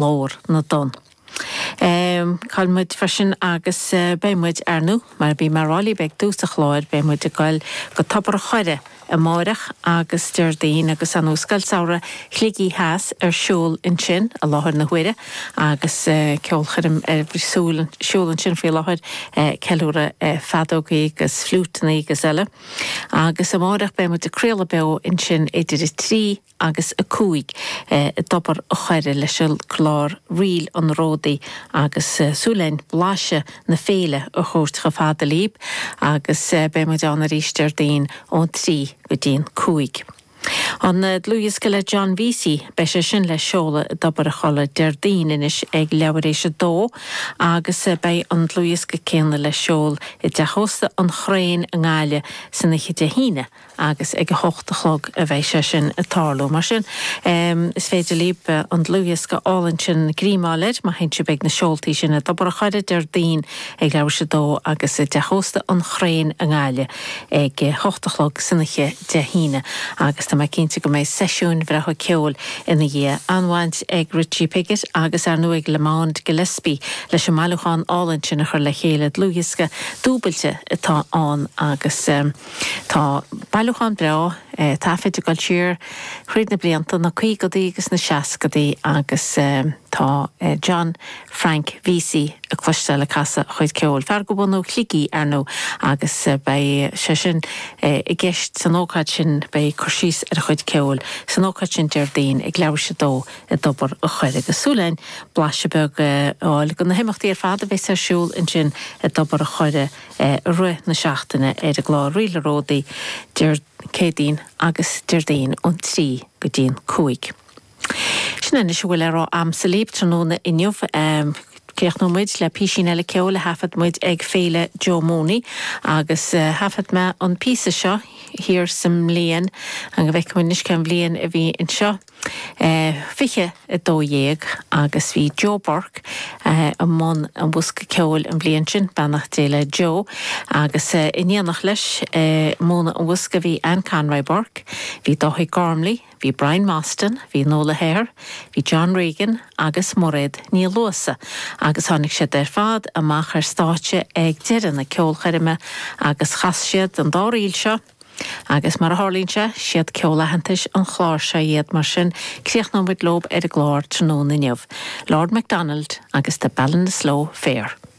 Ghlór na dTonn. Caithfidh muid freisin agus beidh muid, ar ndú, mar a bhí mé a rá libh ag tús an chláir, beidh muid ag goil go Tobar a' Choire amáireach agus Déardaoin agus an Scoil Samhraidh Shligigh Theas ar siúl ansin i láthair na huaire agus ceolchoirm ar siúl, siúl ansin faoi láthair, ceiliúradh feadógaí agus fliúiteannaí agus eile. Agus amáireach beidh muid ag craoladh beo ansin idir a trí, agus a 5 i dTobar a' Choire leis an gclár Ríleanna ar Ródaí agus súil againn blaiseadh na féile a thabhairt chomh fada libh agus beidh muid ann arís Déardaoin ón 3 go dtí an 5. An dlúthdhiosca le John Vesey, beidh sé sin le seoladh i dTobar a' Choire Déardaoin anois ag leathuair tar éis a 2 agus beidh an dlúthdhiosca céanna le seoladh i dTeach Ósta an Chrane i nGaillimh san oíche Dé hAoine agus ag a hocht a chlog a bheidh sé sin ag tarlú. Mar sin, is féidir libh an dlúthdhiosca álainn sin a ghreamú, má théann sibh ag na seoltaí sin i dTobar a' Choire Déardaoin ag leathuair tar éis a 2 agus i dTeach Ósta an Chrane i nGaillimh ag a hocht a chlog san oíche Dé hAoine. Agus tá mé cinnte go mbeidh seisiúin bhreátha ceoil ina dhiaidh. An-bhaint ag Richie Piggott agus, ar ndóigh, ag Lamond Gillespie leis an mbailiúchán álainn sin a chur le chéile, dlúthdhiosca dúbailte atá ann agus, Tá bailiúchán breá taifid ag dul siar thríd na blianta, na caogadaí agus na seascadaí agus tá John Frank Vesey le cloisteáil ag casadh a chuid ceoil, fear de bhunadh Shligigh, ar ndú, agus beidh sé sin i gceist san ócáid sin, beidh cur síos ar a chuid ceoil san ócáid sin Déardaoin ag leathuair tar éis a 2 i dTobar a' Choire. Agus súil againn blaiseadh beag a fháil de na himeachtaí ar fad a bheas ar siúl ansin i dTobar a' Choire I rith na seachtaine ar an gclár Ríleanna ar Ródaí, Dé Céadaoin agus Déardaoin ón trí go dtí an cúig. Sin anois a bhfuil de am agamsa libh tráthnóna inniu. Críochnóidh muid le písín eile ceoil a thaifead muid ag Féile Joe Mooney agus thaifead mé an píosa seo, thiar sa mbliain, an go bhfeicfidh muid anois cén bhliain a bhí anseo. 20 a dó dhéag agus bhí Joe Burke i mbun an bhosca ceoil an bhliain sin, beannacht Dé le Joe, agus in éineacht leis ag múineadh an bhosca bhí Anne Conroy Burke, bhí Dáithí Gormley, bhí Brian Mostyn, bhí Nuala Hehir, bhí John Regan agus Mairéad Ní Luasa agus tháinig siad ar fad amach ar stáitse ag deireadh na ceolchoirme agus chas siad an dá ríl seo, Agus mar a tharlaíonn sé, 'siad ceol aitheantais an chláir seo iad, mar sin críochnóidh muid leob ar an gclár tráthnóna inniu, Lord MacDonald agus The Ballinasloe Fair.